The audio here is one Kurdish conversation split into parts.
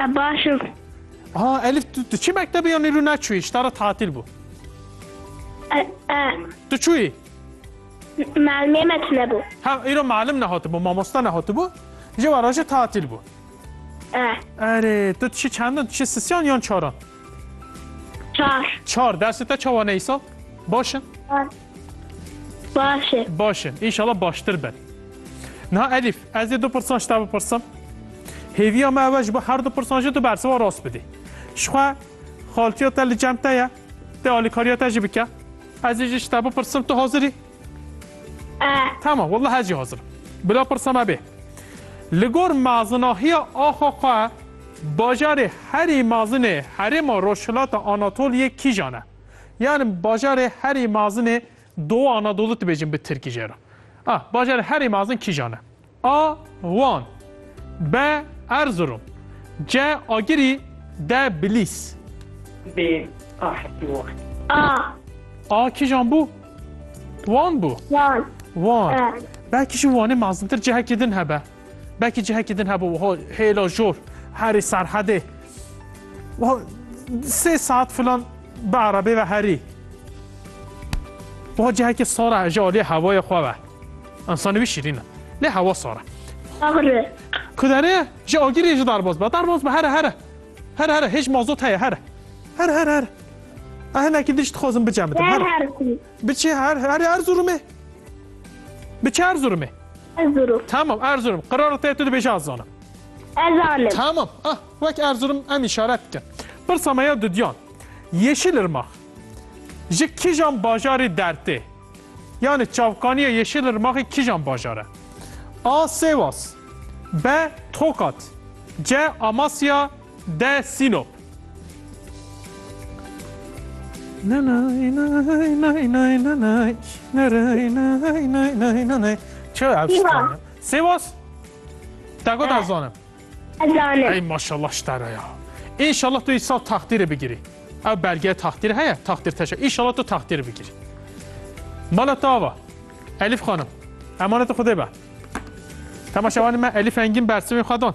E, baş im. Ha Elif tu, tu çi mektebê yanî rû neçûyî ji te re tatil bû. E, e, Tu çûyî? Malmê me tunebû. Ha îro malim nehatibû, mamosta nehatibû. Ji were jî tatil bû. E, Erê tu dişî çendin? Dişî sisyan yan çaran? çar. Çar dersê te çawa ne îsal? Baş in? Baş. Baş e. Baş in. Înşala baştir bin. Niha Elîf, ez ê du pirsan ji te bipirsim. Hêviya me ew e ji bo her du pirsan jî tu bersiva rast bidî. Jixwe xaltiya te li cem te ye, te alîkariya te jî bike. Ez ê jî ji te bipirsim, tu hazir î? E. Tamam, wallah ez jî hazir im. Bila pirsa me bê. Li gor mezinahiya axa xwe, bajarê herî mezin ê herêma rojhilata Anatoliyê kîjan e? Yani bajarê herî mazinê Doğu Anadolu dibêjin bi Tirkî jê re. A. Bajarê herî mazin kîjan e? A. Wan B. Erzurum C. Agirî D. Bilîs B. A hetî wan. A. A kîjan bû? Wan bû. Wan. Wan. E. Belkî jî Wanê mazintir cihekî din hebe. Belkî cihekî din hebû wiha hêla jor herî serhedê wiha sê saet filan bi erebê ve herî. Wiha cihekî sar e ji aliyê hewayê xwe ve. Însanî wî şîrîn e. Lê hewa sar e. Agri. Kuderê ji agirê jî derbas be. Derbas be here here. Here here hêj mazot heye here. Here here here. Ev hinekî din jî dixwazim bicem bidim. Her her. Biçe her her Erzurumê. Biçe Erzurumê. Erzurum. Tamam Erzurum. Qırarı te tu dibêje az zanim. Ezanim. Tamam. Ah, wek Erzurum em işaret dikin. Pirsa me ya dudyan. Yeşilırmak. Ji kijan bajarê dertê? Yani çavkaniya Yeşilırmakê kijan bajare? A. Sêwas B. Tokat C. Amasya De Sînop. Sivas Te got ez zanim. Ez zanim. Ey maşallah ştara ya. İnşallah tu insan takdiri bigiri. Ev belge takdir heye, takdir teşe. İnşallah tu takdir bigiri. Mala tava. Elif Hanım. Emanet Xudê be. Temaşevanê me Elif Engin Bersivê xwe dan.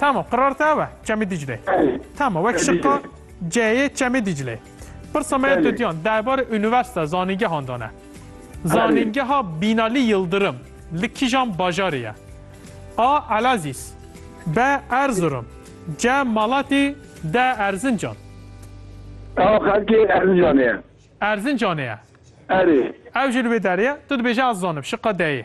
Tamam, qirar te ew e, Çemê Dîclê. Tamam, wek şiqa C'yê Çemê Dîclê. Pirsa me ya Dudyan derbarê unîversîte zanîngehan de ne. Zanîngeha Bînalî Yildirim li kîjan bajarê ye? A. Elazîz B. Erzurum C. Malatî D. Erzincan Ew xelkê Erzincanê ye. Erzincanê ye? Erê. Ew jî li wê derê ye. Tu dibêje ez zanim, şiqa D'yê.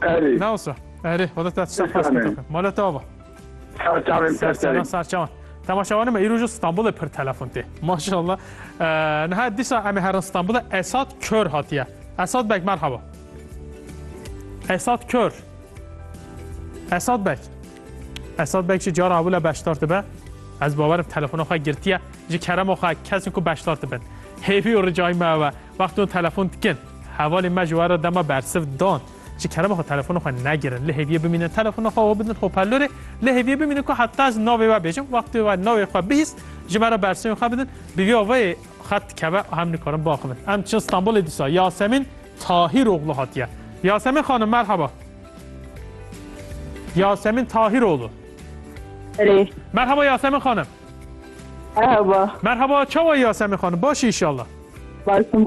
Erê. Nawsa. Erê. Xweda te çiçek xwest Sesane. kete. Mala te ava. Serçavên Serçevan serserê. serçevan. Temaşevanê me îro ji Stenbolê pir telefon tê. Maşallah. Ee, Niha dîsa em ê herin Stenbolê Esat Kör hatiye. Esat Beg merhaba. Esat Kör. Esat Beg. Esat Beg ji cara ewile beşdar dibe. Ez bawerim telefona xwe girtiye. Ji kerema xwe kesên ku beşdar dibin. Hêvî û ricayî me ew e. Wextê wan telefon dikin. Hevalên me ji we re dema bersiv dan. Ji kerema xwe telefona xwe negirin. Li hêviyê bimînin telefona xwe we bidin hoperlorê. Li hêviyê bimînin ku heta ez navê we bêjim. Wextê we navê xwe bihîst ji me re bersivên xwe bidin. Bi vî avayê xet dikeve û hem nikarin biaxivin. Em diçin Stenbolê dîsa Yasemîn Tahîroglu hatiye. Yasemîn xanim merheba. Yasemîn Tahîroglu. Erê. Merheba Yasemîn xanim. Merhaba. Merhaba çawa Yasemîn xanim başî inşallah. Başim